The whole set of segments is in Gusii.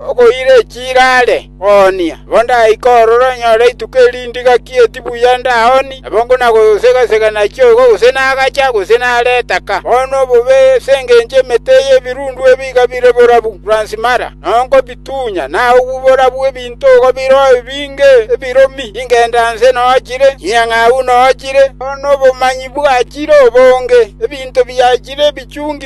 “Okoira echiira are koonia, nabo ndaike ororo nyore rituko eri ndigaki eti buya ndaoni, nabo nkonagosega‐sega nachia igo gose nagacha gose nare etaka. Bono obobe ase engencho y'emete y'ebirundu ebi iga bire borabu Fransi Mara, na nkobitunya, na obwo borabu ebinto igo biro ebinge ebiromi, ingenda nse noochire, chinyang'au noochire, bono obomanyi bwachire obonge, ebinto biachire ebichungi.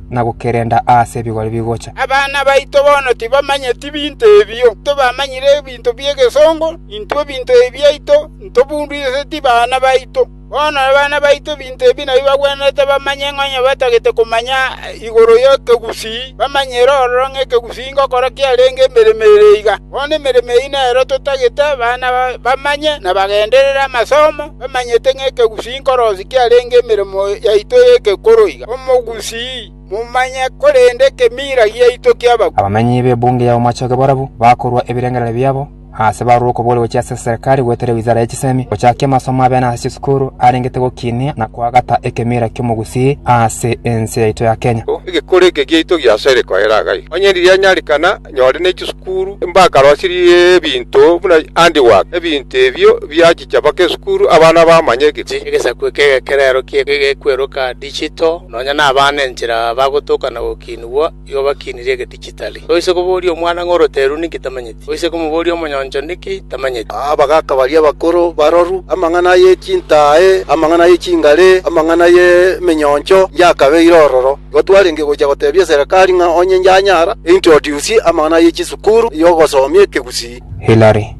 na gokerenda aase ebigori bigocha. “Abana baito bono tibamanyeti binto ebio. Intwe bamanyire ebinto bi'egesongo, intwe ebinto ebi biaito ntobundiriseti bana baito. Bono abana baito ebinto ebi nabio bagwenerete bamanye, onye batagete komanya igoro y'ekegusii, bamanyere ororo ng'a ekegusii ngokora kiarenge emeremo ere iga. Bono emeremo eyio nero totagete abana bamanye na bagenderere amasomo. bamanyete ng'a ekegusii nkorosi kiarenge emeremo yaito y'ekekoro iga. Omogusii momanye, korende ekemiira giaito ki'abakure. Abamenyi b'ebunge y'abamochoge barabwo bakorua ebirengererio biabo aase barure okobori gochia ase eserikari goetera ewizara ye chisemi, gochakia amasomo abene ase chisukuru arengete gokinia na koagata ekemiira ki'omogusii aase ense yaito ya Kenya. Egekoro eke giaito giasere koera agai, onye riria nyarikana Nyore ne chisukuru mbakarosirie ebinto buna handiwork, ebinto ebio biachicha mpaka esukuru abana bamanye egechi. Egesaku eke egekerero ki egekweroka digital, nonya nabana enchera bagotoka na gokinigwa, igo bakinirie egedigitali. Toise koboria omwana ng'a oroteru ninki tamanyeti, toise komoboria omonyoncho niki tamanyeti. Abagaka baria abakoro baroru, amang'ana ye chintaae, amang'ana ye chingare, amang'ana ye menyoncho, yakabeire ororo. Igo twarenge gochia gotebia eserekari ng'a onye yanyara eintroduce amang'ana ye chisukuru y'ogosomia ekegusii. Hillary,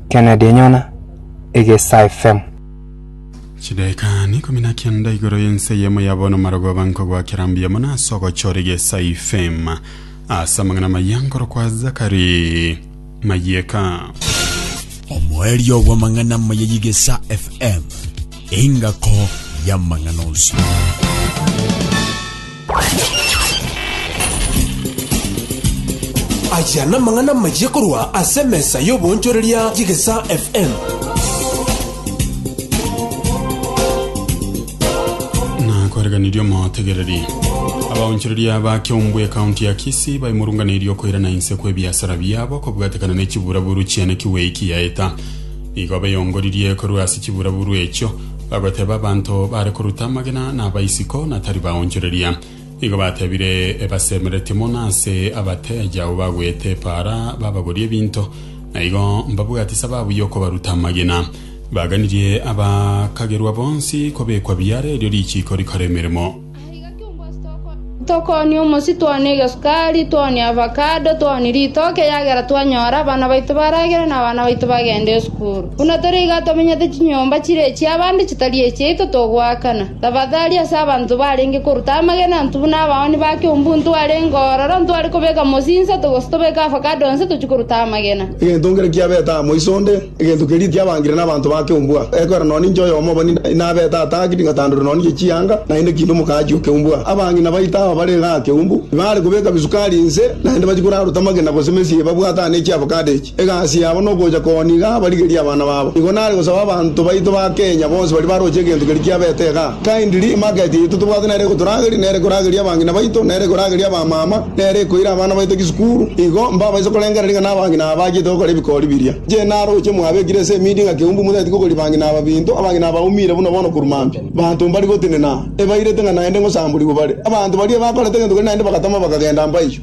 Kennedy nyona egesaifm. Chidaeka neikomi na kenda igoro y'ense eyemo ya bono marogo aba nkogoakera mbuya mono ase ogochora egesaifm ase amang'ana amaya nkorokwa Zachary. mayieka. Omoerio bw'amang'ana amaya y'Igesa FM, engako y'amang'ana onsi. Aya namang'ana amaya korwa ase emesa y'oboonchoreria y'Igesa FM. na koreganirie omotegereri abaonchoreria ba kiombwe ekaunti ya kisi baimorunganeirie okoirana inse kw'ebiasara biabo kobwatekana ne chiburaburu chiane kiweiki yaeta igo beyongoririe korwa ase chiburaburu echio bagoteba abanto bare koruta amagena na abaisiko na tari baonchoreria Igo batebire, Ebasemeretie mono ase abateeja abwo bagwete epaara babagorie ebinto, na igo mbabwate sababu y'okobaruta amagena. Baganirie abakagerwa bonsi kobekwa biara erio richiiko rikore emeremo. Tokoonia omosi, toonie egesukari, toonie avakado, toonie ritoke, ekiagera twanyora abana baito baragere na abana baito bagende isiko. Buna tore iga tomenyete chinyomba chire echi'abande chitari echiaito togoakana. Tafadhali ase abanto barenge koruta amagena intwe buna abaoni ba keumbu ntwarenge ororo ntware kobeka mosii insato gose tobeke avocado inse tochie koruta amagena. Egento nkere kiabete amo iso onde, egento keria tiabangire nabanto ba keumbu aa. Ekwera nonye ninche oyomo obo ninde inabete ata ngaki ting'atandure nonye chianga, naende kiinde omokaachi o keumbu aa. Abange nabaito aba bare iga aa keumbu, tibare kobeka bisukari inse, naende bachikoraruta amagena gose mesii ebabwate aa ne chi'avocado echi. Egasi yabo nogocha koniga abarigerie abana babo. Igo nare gosaba abanto baito ba Kenya bonsi baria baroche egento keria kiabete iga. Kindly, emarket yaito tobwate nere egotorageria, nere ekorageria abang'ina baito, nere ekorageria abamama, nere ekoira abana baito chisukuru. Igo mbabaise korengereria ng'a nabang'ina aba bachiete gokora ebikori biria. Inche naroche mwabekire ase emidi ng'a keumbu motageti kogoria bang'ina aba binto, abang'ina aba baumire buna bono korwa mambia. Abanto mbari gotenena, ebairete ng'a naende ngosamborigwe bare. Abanto baria ebakorete egento keria naende bagatama bakagenda mbaiywo.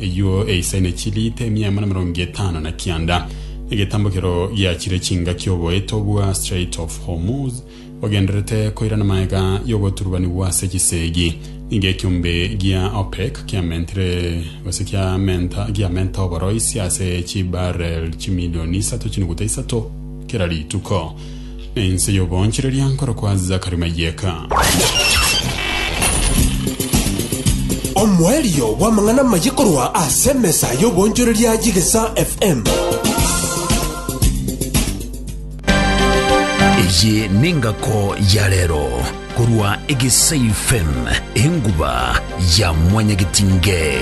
Eyuo eisaine chiliita emia emo na emerongo etano na kianda, egetambokero giachire chingaki oboeto bwa Strait of Hormuz bogendererete koirana magega y'ogoturubanigwa ase chisegi. Nigo ekiombe gia OPEC kiamentire gose kiamenta giamenta oboroisi ase chibarrel chimilioni isato chinuguta isato kera rituko. Ense y'oboonchoreria nkorokwa Zachary Mayeka. Omoerio bw'amang'ana amaye korwa ase emesa y'oboonchoreria y'Egesa FM. Eye nengako ya rero. Korwa egesaifen enguba ya mwanyagetinge.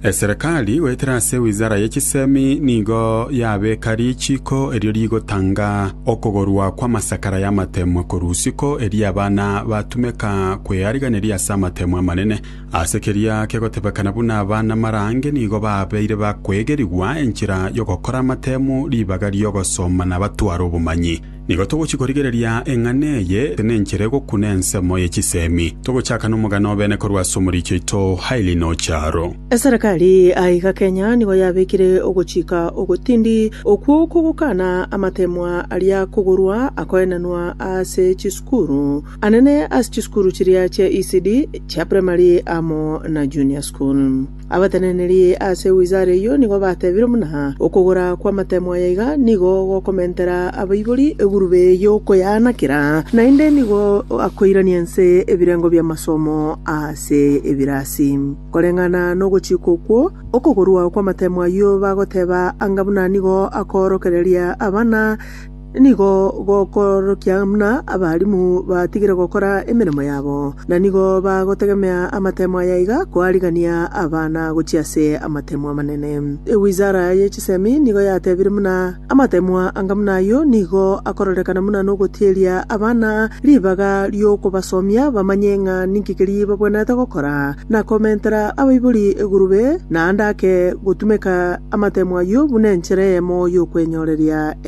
Eserekari goetera ase wizara ye chisemi nigo yabeka richiiko erio rigotanga okogorwa kw'amasakara y'amatemwa korwa usiko erio abana batumeka kweariganeria ase amatemwa amanene. Ase keria kegotebekana buna abana marange nigo babeire bakwegerigwa enchera y'ogokora amatemu ribaga ri'ogosoma na batware obomanyi. Nigo togochia korigereria eng'ana eye ase nenchera egokuna ensemo ye chisemi. Togochaka nomogano obene korwa ase omoriicho oito Hailey Nocharo. Eserekari aiga Kenya nigo yabekire ogochika ogotindi okwo kogokana amateemwa aria kogorwa akoenanwa ase chisukuru anene ase chisukuru chiria chia ECD chia primary amo na junior school. Abateneneria ase wizara eyio nigo batebire buna okogora kw'amatemo aya iga nigo gokomentera abaibori egurube y'okoyaanakera, naende nigo akoirania inse ebirengo bi'amasomo ase ebirasi. Koreng'ana nogochika okwo, okogorwa kw'amatemo ayio bagoteba anga buna nigo akoorokereria abana, Nigo gokoorokia buna abarimu batigire gokora emeremo yabo, na nigo bagotegemea amatemo aya iga koarigania abana gochia ase amatemo amanene. Ewizara ye chisemi nigo yatebire buna amatemo anga buna ayio nigo akororekana buna nogotieria abana ribaga ri'okobasomia bamanye ng'a ninki keria babwenerete gokora, na komentera abaibori egurube, naende ake gotumeka amatemo ayio buna enchera eyemo y'okwenyoreria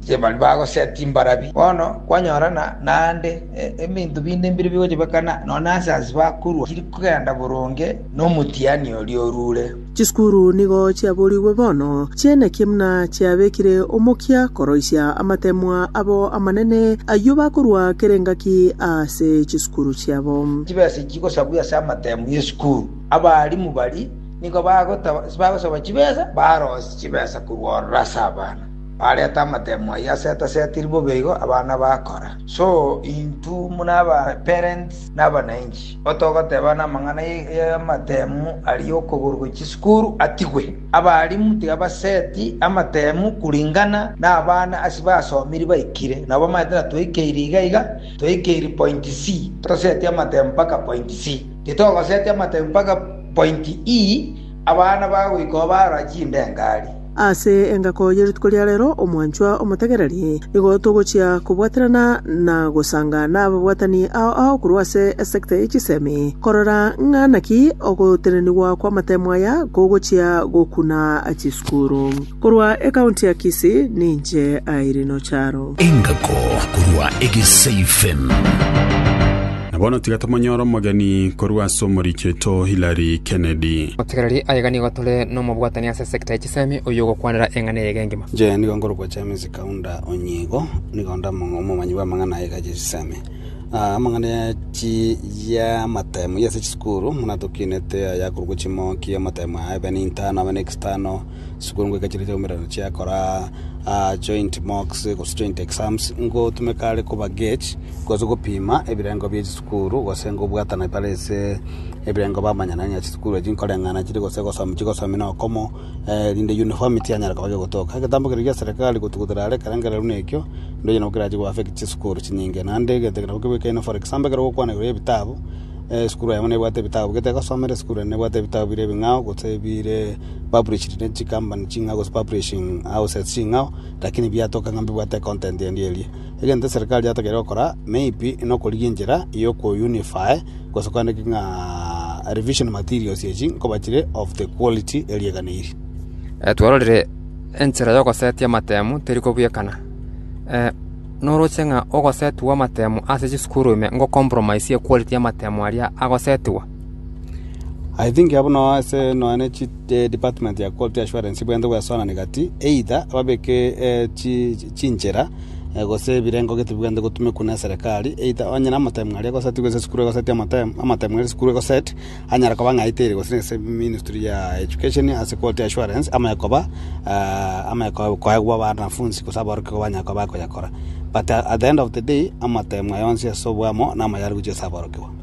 inche baria bagosetia imbarabi. Bono kwanyorana naende ebinto binde mbire bigochebekana, nonya ase ase bakorwa tiri kogenda boronge nomotiani oria orure. Chisukuru nigo chiaborigwe bono, chi'eneki buna chiabekire omokia koroisia amateemwa abo amanene, ayio bakorua kera engaki ase chisukuru chiabo. Chibesa echi chigosabwa ase amateemwa y'esukuru, abaalimu baria nigo bagosaba chibesa, barosie chibesa korwa ororo ase abana. Bareta amatemo ayio asetasetirwe bobe igo abana bakora. So intwe buna abaparents na abananchi, otogoteba namang'ana y'amatemo aria y'okogorwa chisukuru atigwe. Abarimu tiga baseti amatemo kuringana nabana ase basomiri baikire. Nabo bamaete ng'a twaikeire iga iga, twaikeire point C, toseti amatemo mpaka point C. Titogoseti amatemo mpaka point E abana bagoika oo barora chindengari. Ase engako ye rituko ria reero, omwanchwa omotegereri, nigo togochia kobwaterana na gosanga n'ababwatani ao ao korwa ase esekta ye chisemi, korora ng'a naki ogotenenigwa kw'amatemo aya kogochia gokuna chisukuru. Korwa ekaunti ya Kisii, ninche Irene Ocharo. Engako korwa Egesei FM. Na bono tiga tomonyore omogeni korwa ase omoricheto Hillary Kennedy. Omotegereri aye iga nigo tore nomobwatani ase. Secta ye chisemi oyio ogokwanera eng'ana eyaiga engima. Inche nigo nkorokwa James Kaunda Onyigo, nigo nde omong- omomanyi bw'amang'ana aiga chia chisemi. Ah, amang'ana ya chi- ya amatemo ya ase chisukuru buna tokinete aya akorokwa chimoki, amatemo aya abe n'intano abe n'external, chisukuru ngoika chire chiaumerana chiakora ah joint mocks gose joint exams, ngotumeka are koba gauge gose gopima ebirengo bie chisukuru gose ngobwatana bare ase. Ebirengo bamanyana ng'a chisukuru echi nkoreng'ana chiri gose gosom chigosomi nokomo erinde uniform tianyara koba gegotoka. Egetambo keria gia serikali gotugutera are ekerengerero buna ekio, ndoiyo nabo kerache go affect chisukuru chinyinge. Naende egento ekero nabo kebwekaine for example ekero ogokwana igoro y'ebitabu, esukuru yamo nebwate ebitabu gete egosomera, esukuru ende nebwate ebitabu bire ebing'ao gose bire published ne chikambani ching'ao gose publishing houses ching'ao, lakini biatoka ng'a mbibwate econtent endi eria. Egento eserikari yatokeire gokora, maybe nokorigia enchera yokoyunify. gose kwaneke ng'a revision materials echi nkobachire of the quality eriaganeiri. Eh, twarorire enchera y'ogosetia amatemu teri kobuekana. Eh, noroche ng'a ogosetigwa amatemu ase chisukuru ime ngo compromise ye quality y'amatemu aria agosetigwa. I think abo no ase nonya ne chi eh, department ya quality assurance bwente bwesonani gati either babeke eh, chi- chi- chinchera gose ebirengo gete bibwenerete gotumekwa neserekari, eita onye namotemu aria egosetigwa ase esukuru egosetie amotemu, amatemu aria esukuru egoset, anyare koba ng'a aitire gose ase ministry ya education ase quality assurance, ame koba ame ko- koegwa abanafunsi gose aborokigwa igo banyare koba bakoyakora. But at the end of the day, amatemu aya onsi ase oboamo, namo yare gochia ase aborokigwa.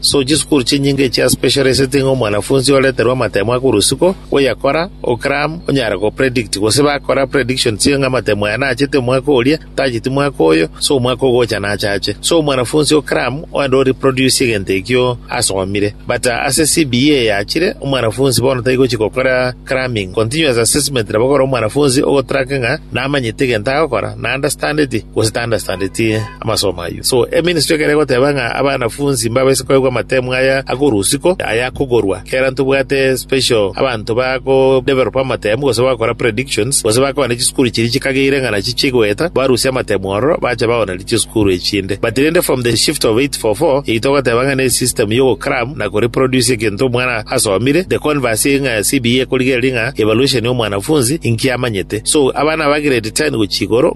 So chisukuru chinyinga echia specialisiti ng'a omwanafunsi oreterwe amatemo akorwa isiko, oyakora, o cram, onyare go predict, gose bakora predictions ye ng'a amatemo aya nachete omwaka oria, tacheti mwaka oyo, so omwaka ogocha nachache. So omwanafunsi o cram oende o reproduce egento ekio asomire. But ase CBE eyachire, omwanafunsi bono tari gochi gokora cramming. Continuous assessment nabo ekore omwanafunsi ogotrack ng'a namanyete egento agokora, na understandeti, gose ta understandeti. amasomo ayio. So, eministry ekero egoteba ng'a abanafunsi mbabaise koigwa amatemu aya akorwa isiko, aya akogorwa, kera ntobwate special abanto bago developa amatemu gose bagokora predictions, gose bakoba ne chisukuru chiria chikageire ng'a nachio chigoeta, barusie amatemu ororo, bache baonerie chisukuru echinde. But rende from the shift of 844, eyio togoteba ng'a ne system ya ogocram na koreproduce egento omwana asomire, the converse ng'a CBE ekorigereria ng'a evaluation ya omwanafunsi inki amanyete. So, abana aba grade ten gochia igoro,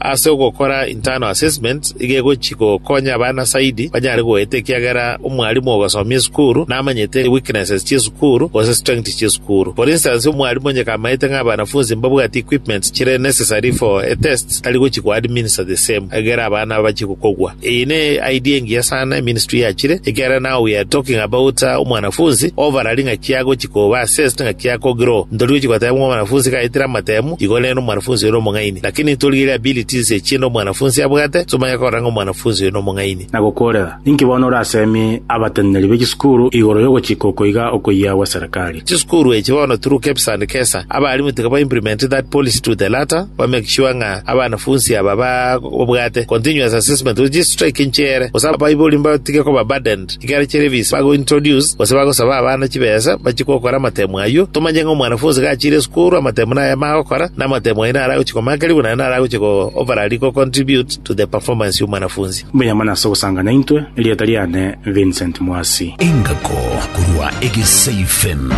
Ase ogokora internal assessments iga egochi gokonya abana zaidi banyare goeta ekiagera omwalimu ogosomia esukuru namanyete weaknesses chi'esukuru gose strengths chi'esukuru. For instance, omwalimu onye kamaete ng'a abanafunsi mbabwati equipments chire necessary for a test, tari gochi ko administer the same egere abana bache gokogwa. Eye ne idea engiya sana eministry yachire ekiagera now we are talking about uh, omwanafunsi overall ng'aki agochi koba assessed ng'aki ako grow. Ntori gochi goteba ng'a omwanafunsi iga aetire amatemo Igo rero omwanafunsi oyo nomong'aini, lakini ntorigerie ability inse echi ende omwanafunsi abwate, somanya korora ng'a omwanafunsi oyo nomong'aini. Na gokoorera, ninki bono orasemie abateneneri be chisukuru igoro y'ogochika oko iga okoyia gwe serikali? Chisukuru echi bono through KEBS and KESA, abalimu tiga ba implement that policy to the latter, ba make sure ng'a abanafunsi aba babwate continuous assessment with strike inche ere, gose abaibori mbatige koba burdened. Ekero chiria ebisi bagointroduce gose bagosaba abana chibesa bachie gokora amatemo ayio, tomanye ng'a omwanafunsi gachiire isiko orwe amatemo nay'ayamo agokora, na amatemo ayio naro agochia komakerigwa naende naro agochia go overally go contribute to the performance y'omwanafunsi. Mbuya mono ase ogosanga naintwe, erieta riane Vincent Mwasi. Engako korwa egeseifen.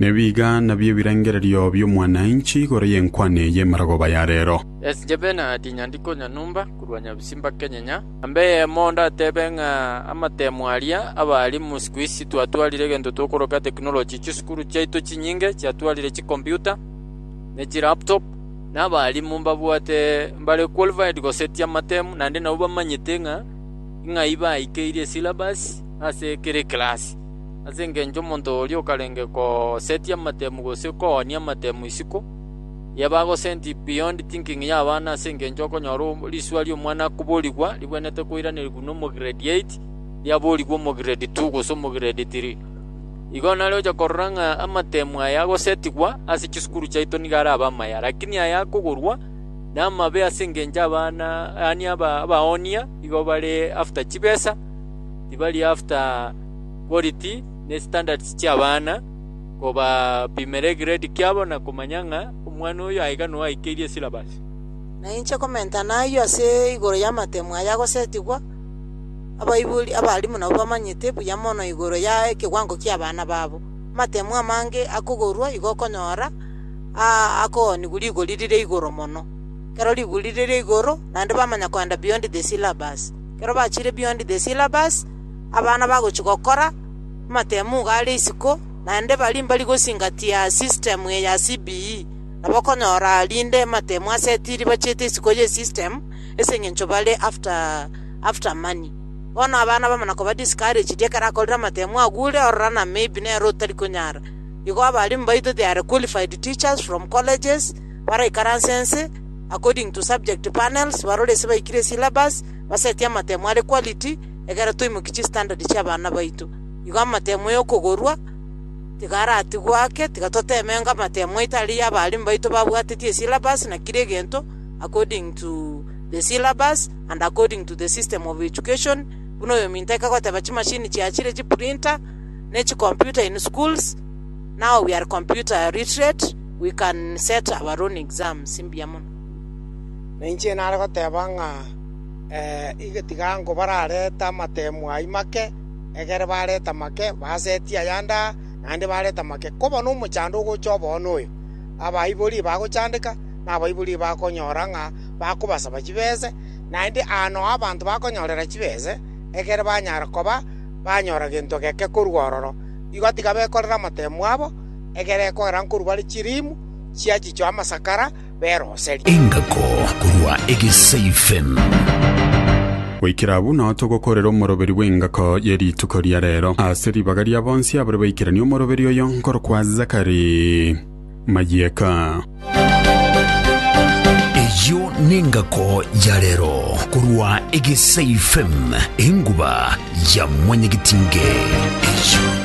Nebiga nabio ebirengererio bi'omwananchi igoro y'enkwane y'emerogoba ya rero. As Jebena at Nyandiko Nyamumba korwa Nyabisimba Kenyenya. Namba eyemo ndatebe ng'a amatemo aria abalimu isiko isi twatwarire egento tokoroka technology, chisukuru chiaito chinyinge chiatwarire chikomputa ne chilaptop, na abalimu mbabwate mbare qualified gosetia amatemo, naende nabwo bamanyete ng'a ing'ai baikeirie esyllabus ase kera ekerasi. Ase engencho omonto oria okarenge kosetia amatemo gose koonia amatemo isiko, Eria bagosenti beyond thinking y'abana ase engencho okonyora riswa ri'omwana koborigwa ribwenerete koiranerigwa na omograde eight, riaborigwe omograde two gose omograde three. Igo nare ocha korora ng'a amatemu aya agosetigwa ase chisukuru chiaito nigo arabe amaya. Lakini aya akogorwa namabe ase engencho abana yaani aba abaonia igo bare after chibesa, tibari after quality ne standards chi'abana. kobapimera egrade kiabo na komanya ng'a omwana oyo aiga noaikeirie esilabasi. Na inche komenta nayio ase igoro y'amatemu aya agosetigwa, abaibori, abalimu nabo bamanyete buya mono igoro ya ekewango ki'abana babo. Amatemu amange akogorwa igo okonyora aa akoonigwa rigori rire igoro mono. Ekero rigori rire igoro, naende bamanya kogenda beyond the syllabus. Ekero bachire beyond the syllabus, abana bagochi gokora. Amatemugo are isiko, naende baria mbari gosingatia system eye ya CBE nabo okonyora rinde amatemu asetiri bachete isiko ye system ase eng'encho bare after after money. Bono abana bamana koba discouraged ekero akorire amatemu agure ororo ng'a maybe nere otari konyara. Igo abalimu baito they are qualified teachers from colleges baraikaranse nse according to subject panels barore ase baikire syllabus basetie amatemu are quality ekero twaimokia chistandard chi'abana baito, igo amatemo y'okogorwa tiga aratigwe ake, tiga toteme ng'a amatemo aito aria y'abalimu baito babwateti esyllabus na kera egento according to the syllabus and according to the system of education, buna oyominto aike goteba chimachine chiachire chiprinter, na echicomputer in schools, now we are computer literate, we can set our own exams, mbuya mono. Na inche nare goteba ng'a. Tiga ango bararete amateemu ayio make, egere barete amake, basetie ayande aa, naende barete amake, koba nomochando ogocha oboo noyo. Abaibori bagochandeka, na abaibori bakonyora ng'a bakobasaba chibese, naende aa nao abanto bakonyorera chibese, egere banyare koba banyora gento geke korwa ororo. Igo tiga bekorere amateemu abo, egere ekogera nkorwa bare chiliimu chiachichwa amasakara. beroserie. Engako korwa egesaifen. Goikera abwo nao togokorera omoroberi bw'engako ye rituko ria rero ase ribaga ria bonsi abare baikeranie omoroberi oyo nkorokwa Zakari Mayeka. Eyio n'engako ya rero korwa egesaifen, enguba ya mwanyagetinge. Eyio.